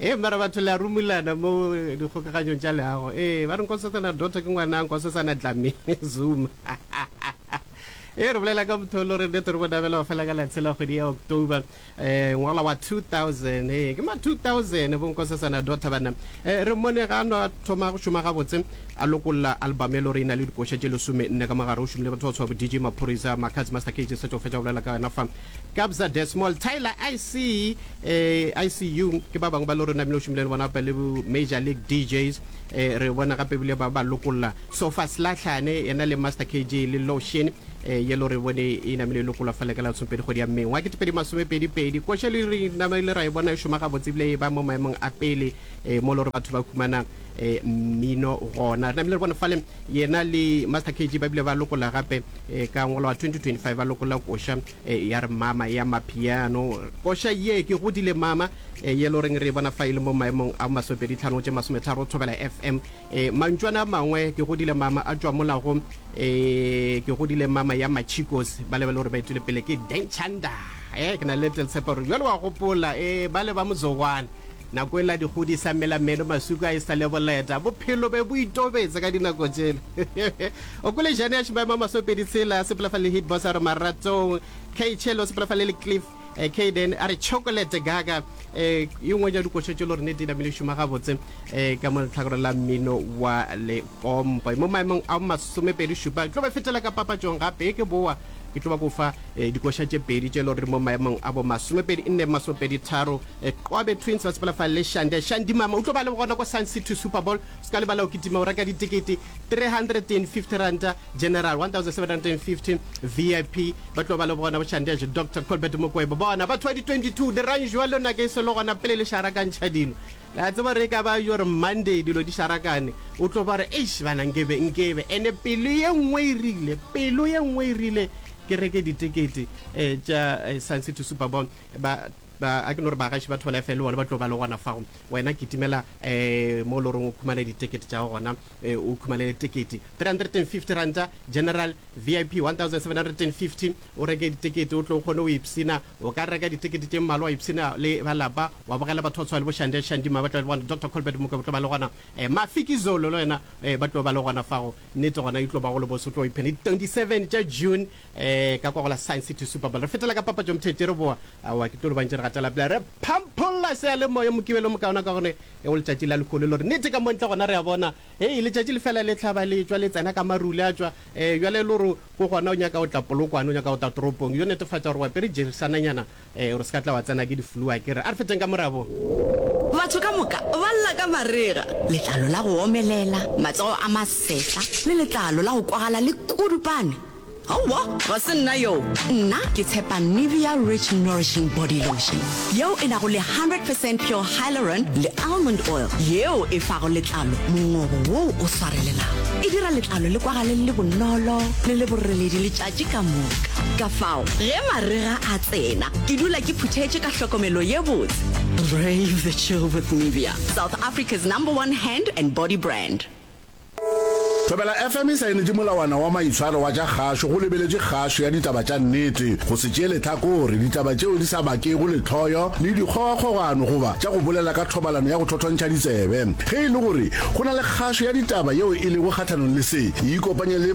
Ee, mara batho le a rumulana mo dikgokaganyong tša leago. Ee, ba re Nkosetsana Dotto ke ngwana Nkosetsana Dlamini Zuma. Ee, re bolela ka motho yo lo re nnete re mo dabela go fela ka la tshela kgwedi ya October eh, ngwaga wa 2000. Ee, ke ma 2000 bo Nkosetsana Dotto banna. Eh, re mmone ga a no a thoma go šoma gabotse a lokolla album e lo re e na le dikoša tše lesome nne ka mogare. O šomile batho ba go tshwa bo DJ Maphorisa, Makhadzi, Master KG, Setšo o fetša go bolela ka yona fa. Kabza De Small, Tyler Ice, ee, ICU, ke ba bangwe ba lo rena ebile o šomile le bona gape le bo Major League DJs, ee, re bona gape ebile ba ba lokolla Sofa Slatlhane, yena le Master KG le Lotion, ee, ye lo re bone e namile e lokolwa fa le ka la lesomepedi kgwedi ya May wa kete pedi masome pedi pedi. Koša le re namile ra e bona e šoma gabotse ebile e ba mo maemong a pele, ee, mo lo re batho ba humana, ee, mmino gona. Re namile re bone fale yena le Master KG ba bile ba lokolla gape E ka ngwalwa 2025 ba lokolla koša e, ya re mama ya mapiano. Koša ye ke godile mama e, ye lo reng re e bona fa e le mo maemong a masopedi tlhano tše masometharo thobela FM e, mantšwana a mangwe ke godile mama a tšwa mola go e, ke godile mama ya machicos ba lebele gore ba etile pele ke denchanda e, ke na le tleltshepo gore bjalo wa gopola e, ba le ba mozogwana. Nako ela dikgodi sa mela meno masuku a e sa le boleta. Bophelo be bo itobetse ka dinako tšela. O kwele jane ya Shimama Masopedi Tshela sepela fa le Hit Boss a re Maratong. Kay Chelo sepela fa le le Cliff eh, Kayden a re Chocolate Gaga. Eh, e nngwe ya dikoša tšelo re ne di namile šoma gabotse eh, ka mo letlhakoreng la mmino wa lekompo. Mo maemong a masomepedi šupa ke tlo ba fetela ka papatšong gape ke boa ke tlo ba ko fa eh, dikoša tše pedi tšelo re mo maemong a bo masomepedi nne masomepedi tharo Qwabe Twins ba sepela fa le Shande Shandy mama. U tlo ba le gona kwa Sun City Super Bowl. U se ka lebala go kitima go reka ditekete R350, General R1,750, VIP ba tlo ba le gona bo Shandesh, Doctor Colbert Mokwebo. Bona batho ba di-22 dirang jwalo nako e sego gona pele le šarakantšha dilo. Le a tseba gore e ka ba gore Monday dilo di šarakane, u tlo ba re, Eish bana nkebe, nkebe. And-e pelo ye nngwe e rile, pelo ye nngwe e rile ke reke ditekete tša Sun City Super Bowl. Ba Ba, a ke no re bagaši ba Thwalefe le bona ba tlo ba le gona fago. Wena kitimela um mo e le goreng o khumane ditekete tša gago gona, um o khumanele tekete. R350, General, VIP, R1,750, o reke ditekete o tlo o kgone go ipshina. O ka reka ditekete tše mmalwa wa ipshina le ba lapa, wa bogela batho ba tshwana le bo Shande Shandima ba tlo ba le gona, Doctor Colbert Mokoe ba tlo ba le gona, um Mafikizolo le yena um ba tlo ba le gona fago. Nnete gona e tlo ba go le bose, o tlo ipshina. Di 27 tša June, Ee, ka kwa go la Science City Super Bowl. Re fetela ka papatšong thetše re boa. Aowa, ke tlo le bantše re gatela pele. Re phampholla seyalemoya Mokibelo mokaona ka gone e go letšatši la lehono le gore nnete ka mo ntle gona re a bona. Hei, letšatši le fela le hlaba le tšwa le tsena ka maru le a tšwa. Ee, bjale e le gore ko gona o nyaka go tla Polokwane, o nyaka go tla toropong, yo netefatša gore o apere jersananyana Ee, o re se ka tla wa tsena ke di-flu a ke re. A re feteng ka morabo. Batho ka moka ba lla ka marega, letlalo la go omelela, matsogo a masetlha le letlalo la go kwagala le kudupane. Aowa, ga se nna yoo. Nna ke tshepa Nivea Rich Nourishing Body Lotion, yeo e nago le 100 percent pure hyaluron le almond oil, yeo e fago letlalo mongobo woo o swarelelago. E dira letlalo le kwagale le le bonolo le le boreledi letšatši. Ke ka moka. Kafao, ge marega a tsena, ke dula ke phuthetše ka hlokomelo ye botse. Brave the chill with Nivea, South Africa's number one hand and body brand. Thobela FM e saenetše molawana wa maitshwaro wa tša kgašo go lebeletše kgašo ya ditaba tša nnete, go se tšeele tlhakore, ditaba tšeo di sa bakego lehloyo le dikgogakgogano goba tša go bolela ka thobalano ya go thothontšha ditsebe. Ge e le gore go na le kgašo ya ditaba yeo e lego kgahlanong le se, e ikopanye le